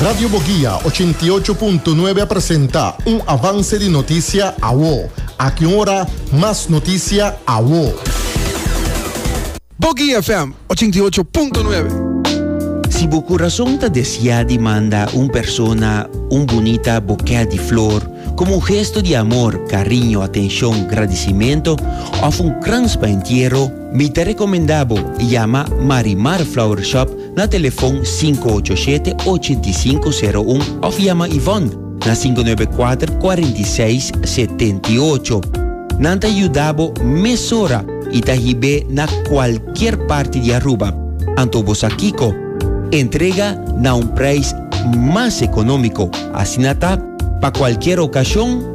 Radio Boguia 88.9 a presenta un avance di noticia awo. Aki un ora mas noticia awo. Boguia FM 88.9. Si bo curason ta desia di manda un persona un bunita bokè di flor como un gesto di amor, cariño, atencion, gradicimento of un krans pa entiero, Mi ta recomenda bo yama Marimar Flower Shop na telefon sinku ocho shete ochenta i sinku sero un of yama Yvonne na sinku nuebe kuater kuarenta i seis setenta i ocho. Nan ta yuda bo mesora i ta hib'é na kualkier parti di Aruba. Anto bo sa kiko? Entrega na un prijs mas economico, asina ta pa kualkier ocasion.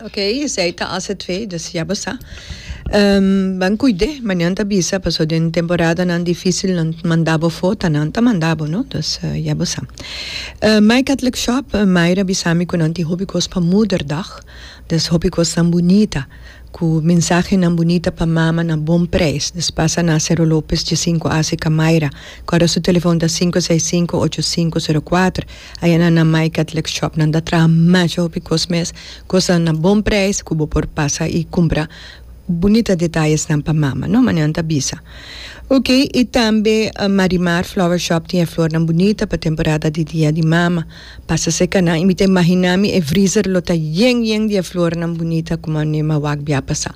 Ok esey ta hace twe dus ya bo sa. Ban cuide manian ta bisa paso den temporadanan dificil nan manda bo fo ta nan ta manda bo no dus ya bo sa. My Catholic Shop Myra bisa mi cu nan tin hopi cos pa Moederdag dus hopi cosnan bunita cu mensahenan bunita pa mama na bon prijs dus pasa na Cero Lopez Dje Cinco Ace Ca Myra cu arosu telefon ta sinku e seis sinku ocho sinku sero kuater Ayana na My Catholic Shop nan ta traha masha hopi cos mes, cosnan na bon prijs cu bo por pasa y cumpra bunita detayesnan pa mama, no? Mane nan ta bisa. Ok, y tambe Marimar Flower Shop tin e flornan bunita pa temporada di Dia di Mama. Pasa seca nan y mi ta imagina mi e vriezer lo ta yen yen di e flornan bunita cu mane Mawak bia pasa.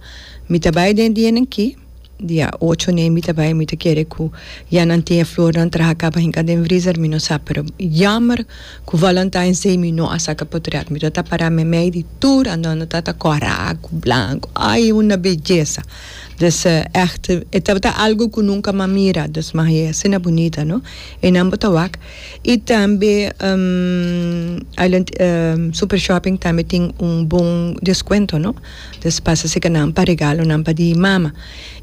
Mi ta bay den dienen ki. Dia ocho n'e mi ta bai mi ta kere ku ya nan tin e flornan traha kaba hinka den vrizer mi no sa pero yammer ku valantines day mi no a saka potriat mi ta ta para meimei di tur andando ta ta kora ku blanko ai una bellesa des echt e tabata algo ku nunka mi a mira des ma e asina bunita no e nan bo ta wak i tambe Island super shopping tambe tin un bon deskuento no. Nos pasa seca nan pa regalonan pa di mama.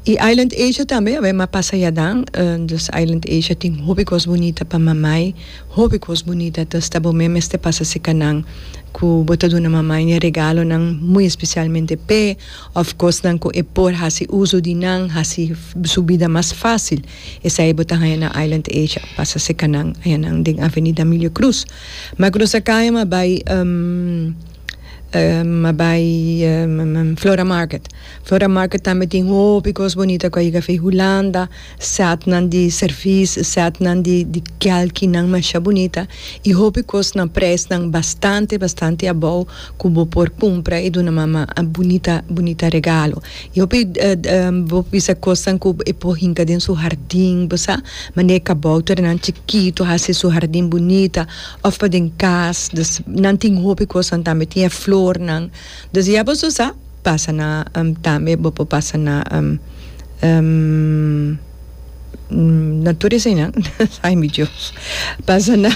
Y Island Asia tambe a m'a pasa yadan. Dus Island Asia tin hopi cos bunita pa mamai, hopi cos bunita. Entonces ta bo me mester pasa seca nan cu bo ta duna mamai e regalonan, muy especialmente p'e of cosnan cu e por haci uzo di nan, haci su bida mas facil. Esai bo ta haya na Island Asia, pasa seca nan. Haya nan den Avenida Emilio Cruz. Macro Zakaya m'a bay. M'a bai Flora Market. Flora Market tambe tin hopi kos bonita ku a yega afei hulanda, sètnan di sèrvis, sètnan di di kelkinan masha bonita i hopi kosnan presnan bastante bastante abou ku bo por kumpra i duna mama bonita bonita regalo. I hopi bo bisa kosnan ku e por hinka den su hardin bo sa, mane e kabouternan chikitu hasi su hardin bonita of pa den cas dus nan tin hopi cosnan tambe tin e flornan dus ya bo su sa pasa na tambe bo por pasa na na tur eseinan ay mi Dios pasa na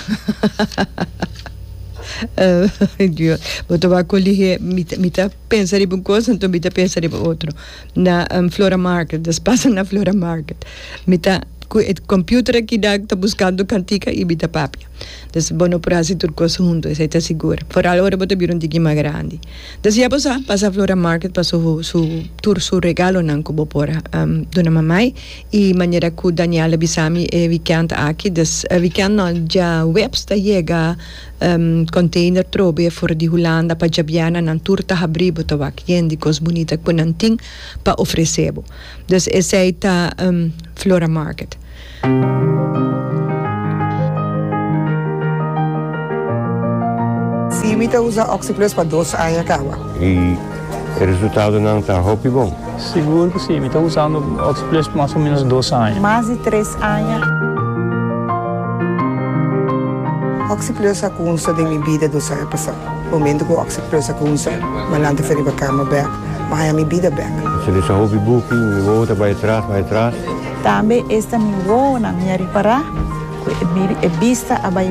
ay Dios bo ta wak coligie mi ta mi ta pensa riba un cos anto mi ta pensa riba otro. na flora market dus pasa na flora market mi ta cu e computer aki dal ta buscando cantica y mi ta papia dus bo no por haci tur cos hunto esai ta sigur foral ora bo ta bira un tiki mas grandi dus ya bo sa pasa flora market pa su su tur su regalonan cu bo por duna mamai y manera cu Daniel a bisami e weekend aki dus weekend no djahuebs ta yega. Container trobe for di Hulanda pa djabiana nan tur ta habri bo ta wak yen di cos bunita cu nan tin pa ofrece bo. Dus esey ta Flora Market. Si mi ta usa oxyplus pa dos aña caba. E resultadonan ta hopi bon. Sigur cu si, mi ta usando Oxplus mas o menos dos aña. Mas di tres aña. Oxplus a cunsa den mi bida dos aña pasa. Momento cu Oxplus a cunsa, Malan ta fe riba cama bek, ma aña mi bida bek. Mi ta lesa hopi buki, mi wowo ta bay atras, bay atras. Tambe esta mi wowonan mi a ripara cu e bista a bay.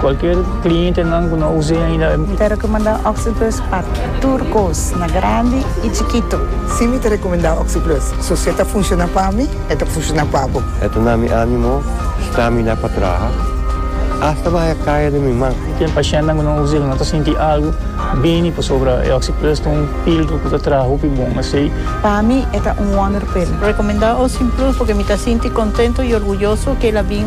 Cualkier clientenan cu no a us'e ainda. Mi ta recomenda Oxyplus pa tur cos, na grandi y chikito. Si mi ta recomenda Oxyplus, so si e ta funciona pa mi, e ta funciona pa bo. E ta na mi animo stamina pa traha, hasta maya caya den mi man. Ten pacientnan cu no a us'e cu no ta sinti algo bini pasobra e Oxyplus ta un filtro cu ta traha hopi bon asey. Pa mi e ta un wonderpill. Recomenda Oxyplus porque mi ta sinti contento y orguyoso cu el a bin.